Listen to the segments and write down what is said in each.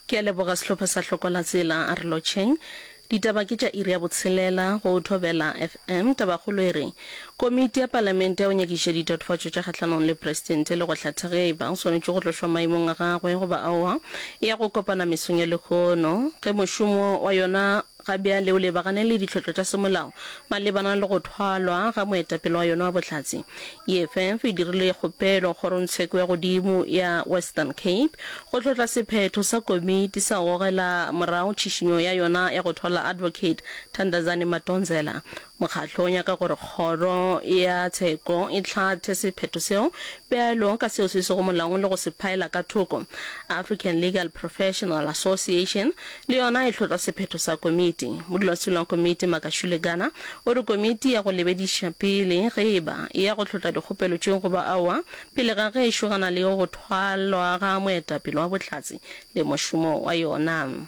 Ke a leboga sehlopha sa Hlokola Tsela a re lotšheng. Ditaba ke tša iri ya botshelela go Thobela FM. Tabakgolo e re, Komiti ya Palamente ya go nyakiša ditatofatšo tša kgahlanong le Presidente le go hlatha ge e ba o swanetše go tlošwa maemong a gagwe goba aowa e ya go kopana mesong ya lehono ge mošomo wa yona Ga bjale o lebagane le ditlhotlo tša semolao malebana le go thwalwa ga moetapele wa yona wa bohlatse. EFF e dirile kgopelo kgorongtsheko ya godimo ya Western Cape go tlhotla sephetho sa komiti sa gogela morago tšhišinyo ya yona ya go thwala Advocate Thandazani Madonsela Mokgatlo o nyaka gore Kgoro ya Tsheko e hlathe sephetho seo bjalo ka seo se sego molaong le go se phaela ka thoko. African Legal Professional Association le yona e hlotla sephetho sa komiti. Modulasetulo wa komiti, Makashule Gana, o re komiti ya go lebediša pele ge e ba e ya go hlotla dikgopelo tše goba aowa pele ga gešo gana le go thwalwa ga moetapele wa Bohlatse le mošomo wa yona.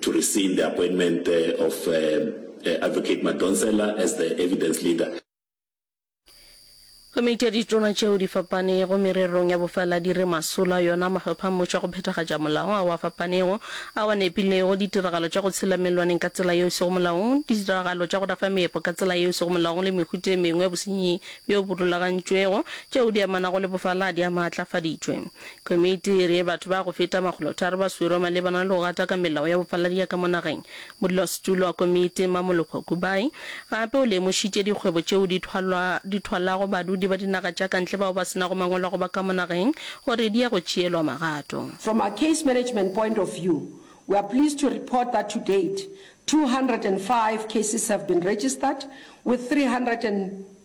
to rescind the appointment of uh, uh, Advocate Madonsela as the evidence leader. Komiti ya ditona tšeo di fapanego mererong ya bofaladi re masola yona mahlopha a mmušo a go phethagatša molao ao a fapanego ao a nepilego ditiragalo tša go tshela melwaneng ka tsela yeo e sego molaong, ditiragalo tša go rafa meepo ka tsela yeo e sego molaong le mehuta e mengwe ya bosenyi bjo bo rulagantšwego tšeo di amanago le bofaladi a maatlafaditšwe. Komiti e re batho ba go feta makgolotharo ba swerwe malebana le go gata ka melao ya bofaladiya ka mo nageng. Modulasetulo wa komiti, Mmamolokgwe Kubayi, gape o lemošitše dikgwebo tšeo di thwalwa di thwalago badudi ba dinaga tša kantle bao ba se nago mangwalo a go ba ka mo nageng gore di ya go tšeelwa magato. From a case management point of view, we are pleased to report that to date, two hundred and five cases have been registered, with three hundred and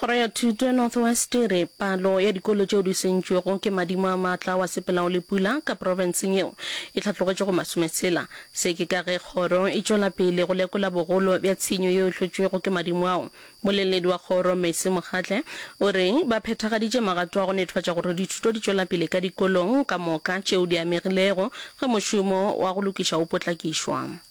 Kgoro ya Thuto ya North West e re palo ya dikolo tšeo di sentšwego ke madimo a maatla a wa sepelago le pula ka profenseng yeo e hlatlogetše go masometshela. Se ke ka ge kgoro e tšwela pele go lekola bogolo bja tshenyo yeo e hlotšwego ke madimo ao. Moleledi wa kgoro Mercy Mokgatle o re ba phethagaditše magato a go nethofatša gore dithuto di tšwela pele ka dikolong ka moka tšeo di amegilego ge mošomo wa go lokiša o potlakišwa.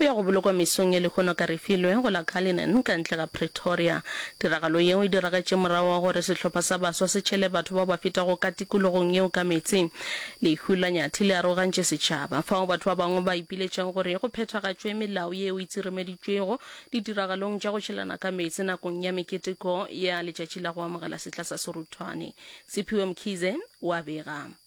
O ya go bolokwa mesong ye lehono ka Refilwe, go la Cullinan, ka ntle ga Pretoria. Tiragalo yeo e diragetše morago ga gore sehlopha sa baswa se tšhele batho bao ba fetago ka tikologong yeo ka meetse. Lehu la Nyathi le arogantše setšhaba, fao batho ba bangwe ba ipiletšago gore go phethagatšwe melao yeo e tsirimeditšwego ditiragalong tša go tšhelana ka meetse nakong ya meketeko ya letšatši la go amogela setla sa Seruthwane. Sephiwe Mkhize o a bega.